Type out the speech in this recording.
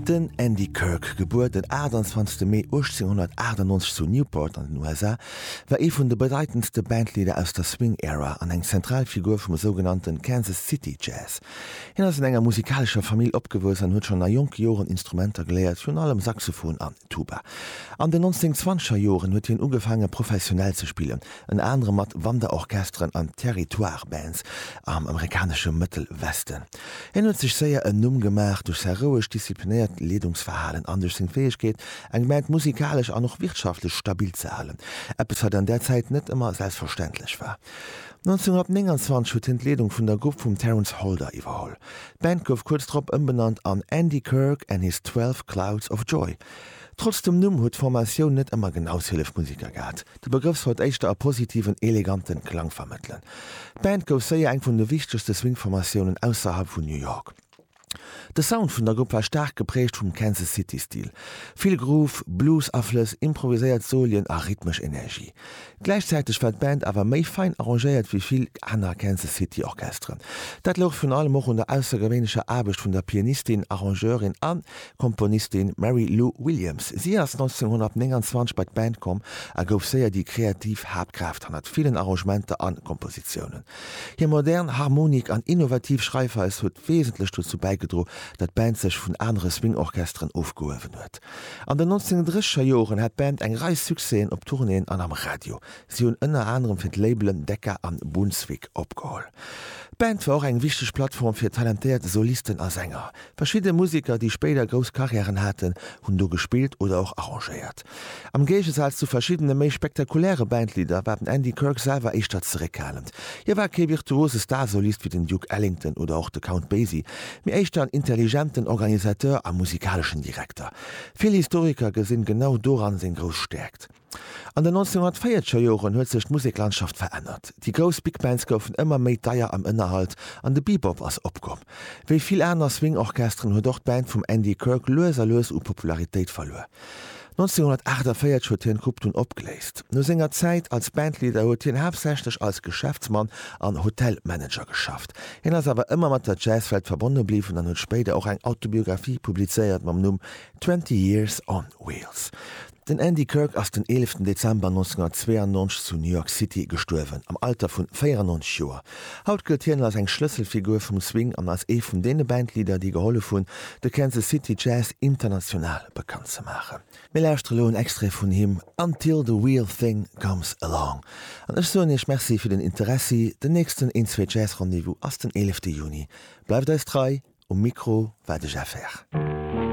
Den Andy Kirk, gebuer den 28 Mee 1898 zu Newport an den USA, war ee vun de bedeitendste Bandleader aus der Swing Era an eng zentral Figur vum sougenannte Kansas City Jazz. Hien ass an enger musikalescher Famill opgewuess an huet schonn a jonke Joren Instrumenter geléiert, virun allem Saxophon an Tuba. An den 1920er Joren huet hien ugefaange professionell ze spillen, ënner anerem mat Wanderorchesteren an Territoire Bands am amerikanesche Mëttelwesten. Hien huet sech séier en Numm gemaach duerch säi rouegt, disziplinéiert Leedungsverhalen an duerch seng Fäegkeet, eng Gemeng musikalesch an och wirtschaftlech stabil ze halen, eppes wat an där Zäit net ëmmer selbstverständlech war. 1929 huet hien d'Leedung vun der Grupp vum Terence Holder iwwerholl. D'Band gouf kuerz drop ëmbenannt an Andy Kirk and His Twelve Clouds of Joy. Trotz dem Numm huet d'Formatioun net ëmmer genau Hillef Musiker gehat. De Begrëff sollt éischter e positiven, eleganten Klang vermëttelen. D'Band gouf séier eng vun de wichtegste Swing-Formatiounen ausserhalb vun New York. De Sound vun der Grupp war staark geprägt vum Kansas City Stil, vill Groove, Blues-Aflëss, improviséiert Solien a rhythmesch Energie. Gläichzäiteg war d'Band awer méi fein arrangéiert wéi vill aner Kansas City Orchesteren. Dat louch virun allem och un der aussergewéinlecher Aarbecht vun der Pianistin, Arrangeurin an Komponistin Mary Lou Williams. Si ass 1929 bei d'Band komm a gouf séier déi kreativ Haaptkraaft hannert villen Arrangementer a Kompositiounen. Hir modern Harmonik an innovativ Schreifweis huet wesentlech dozou bäigedro, datt d'Band sech vun anere Swing-Orchesteren ofgehuewen huet. An den 1930er Joren hat d'Band eng Rei Succèsen op Tournéeën an am Radio. Si hunn ënner anerem fir d'Labelen Decca an Brunswick opgeholl. D'Band war och eng wichteg Plattform fir talentéiert Solisten a Sänger. Verschidde Museker, déi spéider grouss Carrièren haten, hunn do gespillt oder och arrangéiert. Am Géigesaz zu verschiddene méi spektakuläre Bandleader war den Andy Kirk selwer éischter zeréckhalend. Hie war kee virtuose Starsolist wéi den Duke Ellington oder och de Count Basie, mee éischter en intelligenten Organisateur a musikaleschen Direkter. Vill Historiker gesinn genau doran seng grouss Stäerkt. An den 1940er Joren huet sech d'Museklandschaft verännert. Déi grouss Big Bands goufen ëmmer méi deier am Ënnerhalt an de Bebop ass opkomm. Wéi vill aner Swing-Orchesteren huet och d'Band vum Andy Kirk lues a lues u Popularitéit verluer. 1948 huet hien d'Grupp dunn opgeléist. No senger Zäit als Bandleader huet hien haaptsächlech als Geschäftsmann an Hotelmanager geschafft. Hien ass awer ëmmer mat der Jazzwelt verbonne bliwwen an huet spéider och eng Autobiographie publizéiert mam Numm Twenty Years on Wheels. Den Andy Kirk ass den 11 Dezember 1992 zu New York City gestuerwen, am Alter vun 94 Joer. Haut gëllt hien als eng Schlësselfigur vum Swing an als ee vun deene Bandleader, déi gehollef hunn, de Kansas City Jazz international bekannt ze maachen. Mir lauschtere lo en Extrait vun him, Until the Real Thing Comes Along. An ech soen iech Merci fir den Interessi. Den nächsten Een Zwee Jazz Rendez-vous ass den 11 Juni. Bleift eis trei, um Mikro war de Jeff Herr.